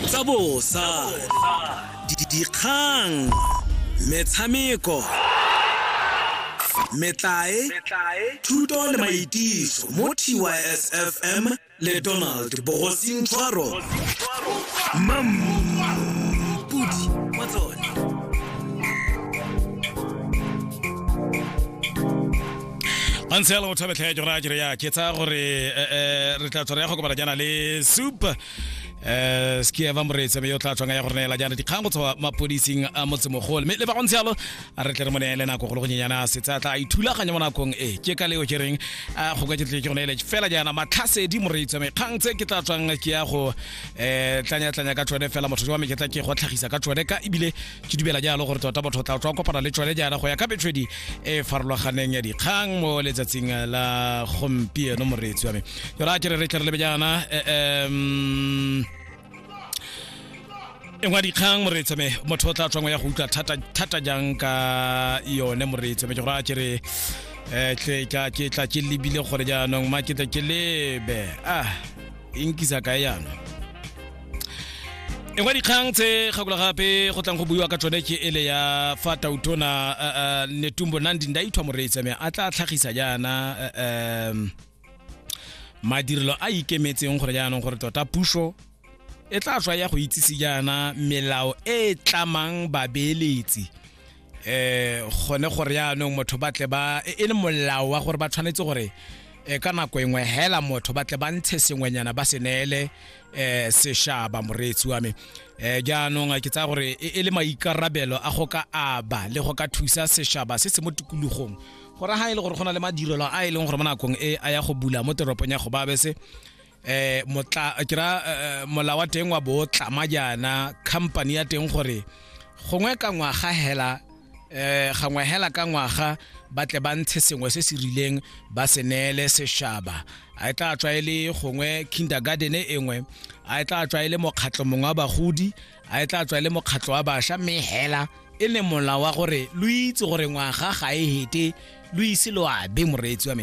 tsa bosa dikgang metshameko metlae thuto le maitiso mo tysfm le donald bogosing tshwaro mampudi wa tsone a ntse yalo motho a betlha ya jora jere ya ke tsa gore eh, eh, re tla tswa re ya go kopana jaana le soup eh ski eva moretsi me yo tla tswang ya go neela jaana dikgang go tswa mapodising a motsemogolo mme le ba go ntse yalo a re tle re mo neele nako go le go nyenyana setsa tla a ithulaganya mo nakong e ke ka leo ke reng a go ka ke tle ke go neele fela jaana matlhasedi moretsi me kgang tse ke tla tswang ke ya go eh tlanya tlanya ka tsone fela motho wa me ke tla ke go tlhagisa ka tsone ka ebile ke dumela jalo gore tota batho tla tla kopana le tsone jaana go ya ka metswedi e farologaneng ya dikgang mo letsatsing la gompieno moreetsi wa me yona ke re re tle re lebe jaana um e ngwa dikgang moreetsi me motho o tla tswang ya go utlwa thata thata jang ka yone moreetsi me ke gore a ke re eh, tle ka ke tla ke lebile gore jaanong ma ke tle ke lebe ah e nkisa kae yana e ngwa dikgang tse kgakula gape go tlang go buiwa ka tsone ke ele ya fa tautona uh, uh, netumbo nandi ndaithwa moreetsa me a tla tlhagisa jaana uh, um, madirelo a ikemetseng gore jaanong gore tota puso e tla tswa ya go itsise jaana melao e e tlamang babeeletsi eh gone gore yaanong motho ba tle ba e e le molao wa gore ba tshwanetse gore eh, ka nako engwe hela motho ba tle ba ntshe sengwenyana ba se neele eh seshaba moreetsi wa me eh jaanong a ke tsaya gore e e le maikarabelo a go ka aba le go ka thusa seshaba se se mo tikologong gore ha e le gore go na le madirelo a e leng gore mo nakong e a ya go bula mo teropong ya go babese eh motla ke ra eh, mola wa teng wa bo tlama jaana company ya teng gore gongwe ka ngwaga hela eh gangwe hela ka ngwaga ba tle ba ntshe sengwe se se rileng ba se neele seshaba a e tla tswa e le gongwe kindergarten e engwe a e tla tswa e le mokgatlho mongwe wa bagodi a e tla tswa e le mokgatlho wa bašwa mme hela e le mola wa gore lo itse gore ngwaga ga e hete lo ise lo abe moreetsi wa